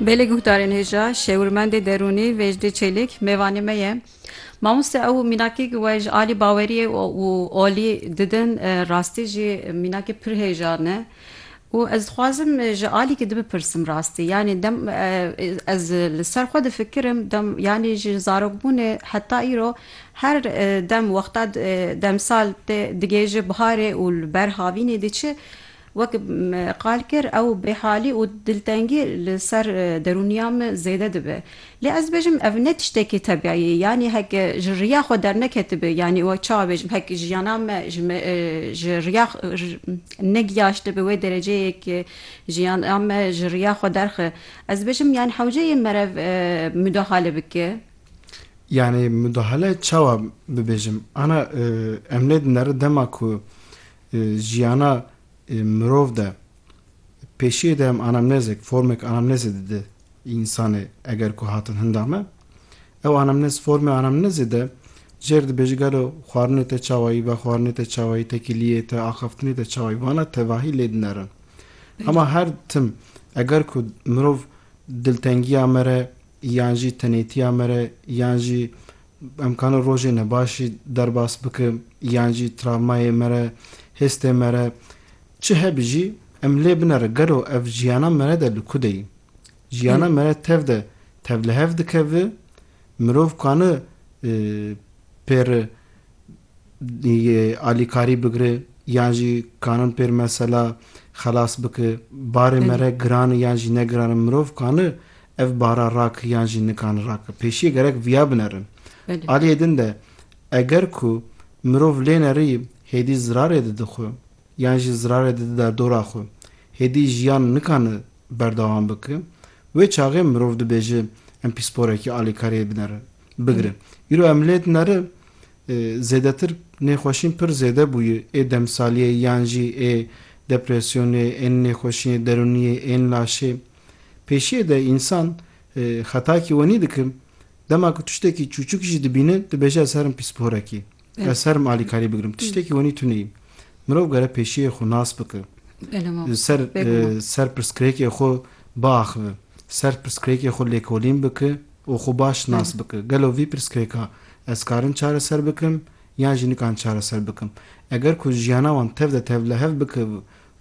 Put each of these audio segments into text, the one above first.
Belê guhdarên hêja şêwirmendê derûnî Vêjdî Çelîk mêvanê me ye. Mamoste ew mînakîk we ji alî baweriyê û olî didin rastî jî mînakî pir hêja ne û ez dixwazim ji alî kî dibipirsim rastî yanî dem ez li ser xwe difikirim dem yanî ji zarokbûnê heta îro her dem wexta demsal tê digihêje biharê û li ber havînê diçi Wek qal kir ew bêhalî û diltengî li ser derûniya min zêde dibe. Lê ez dibêjim ev ne tiştekî tebîî ye yanî hek ji riya xwe derneketibe yanî wek çawa bêjim hek jiyana me ji me ji riya negiyaştibe wê dereceyê ke jiyana me ji riya xwe derxe ez dibêjim yanî hewce yê merev mudahale bike. Yanî mudahale çawa bibêjim ana em lê dinere dema ku jiyana mirov de pêşiyê de em anamnezek, formek anamnezê dide însanê eger ku hatin hinda me. Ew anamnez formê anamnezê de jêr dibêje gelo xwarinê te çawayî, vexwarinê te çawayî, tekiliyê te, axaftinê te çawayî vana tevahî lê dinerin. Hema her tim eger ku mirov diltengiya me re yan jî tenêtiya me re yan jî Em kane rojê nebaşî derbas bikim yan jî travmayê me re, hêstê me re çi hebî jî em lê binere gelo ev jiyana me re de li ku de yî? Jiyana me re tev de tevlihev dike vi mirov kane pêri alîkarî bigire yan jî kanin pêr mesela xelas bike. Barê me re giran e yan jî ne giran e. Mirov kani ev bara rake yan jî nikani rake. Pêşiyê gerek viya binerin. Aliyê din de eger ku mirov lê nerî hêdî zirarê dide xwe yan jî zirarê dide derdora xwe, hêdî jiyan nikane berdewam bike. Wê çaxê mirov dibêje em pîsporekî alîkariyê binerin. bigire. Îro em lê dineri zêdetir nêxweşîn pir zêde bûye ê demsaliyê yan jî ê depresyonê, ên nêxweşiyên derûniyê, ên laşê. Pêşiyê de însan xetakî wenî dike, dema ku tiştekî çûçik jî dibîne dibêje ez herim pîsporekî. Ez ser im alîkarî bigirim. Tiştekî wenî tu neyî. Mirov gere pêşiyê xwe nas bike. Ser ser pirsgirêkê xwe biaxive. Ser pirsgirêkê xwe lêkolîn bike û xwe baş nas bike. Gelo vî pirsgirêka ez karim çareser bikim yan jî nikan çareser bikim. Eger ku jiyana wan tev de tevlihev bike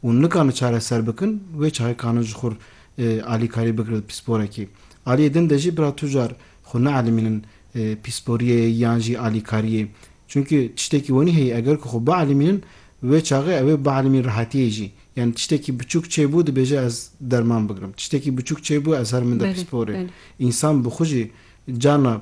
û nikane çareser bikin wê çayê kane ji xwe alîkarî bigire di pîsporekê. Aliyê din de jî bira tu car xwe neelîmînin pîsporiyê yan jî alîkariyê. Çunkî tiştekî wenî heye eger ku xwe bielîmînin wê çaxê ew ê bielîmîn rehetiyê jî. Yanî tiştekî biçûk çêbû dibêje ez derman bigirim. Tiştekî biçûk çêbû ez herim min de pîsporê. Însan bi xwe jî carna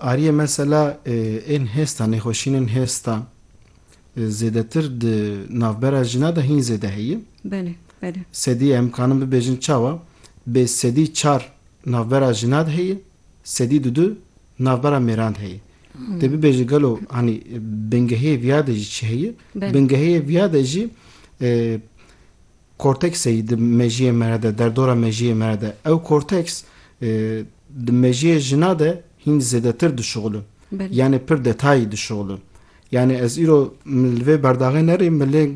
Ariyê mesela ên hêsta nêxweşînên hêsta zêdetir di navbera jina de hîn zêde heye. Belê, belê. Sedî em kanin bibêjin çawa? Bê sedî çar navbera jina de heye, sedî du du navbera mêran de heye. Dê bibêje gelo hanî bingehê viya de jî çi heye? Bingehê viya de jî Kortekseyî di mejiyê me re de, derdora mejiyê me re de, ew korteks di mejiyê jina de hîn zêdetir dişuxulin. Yanê pir detayî dişuxulin. Yanê ez îro li vê berdaxê nerîm me lê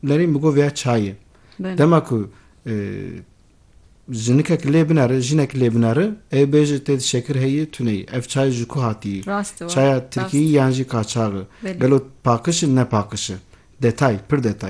nerîm bi govya çayê. Dema ku jinikek lê binere, jinek lê binere, ê bêje tê di şekir heyî, tuneyî. Ev çay ji ku hatiyî? Çaya tirkiyî yan jî kaçax e? Gelo pakiş e ne pakiş e? Detay, pir detay.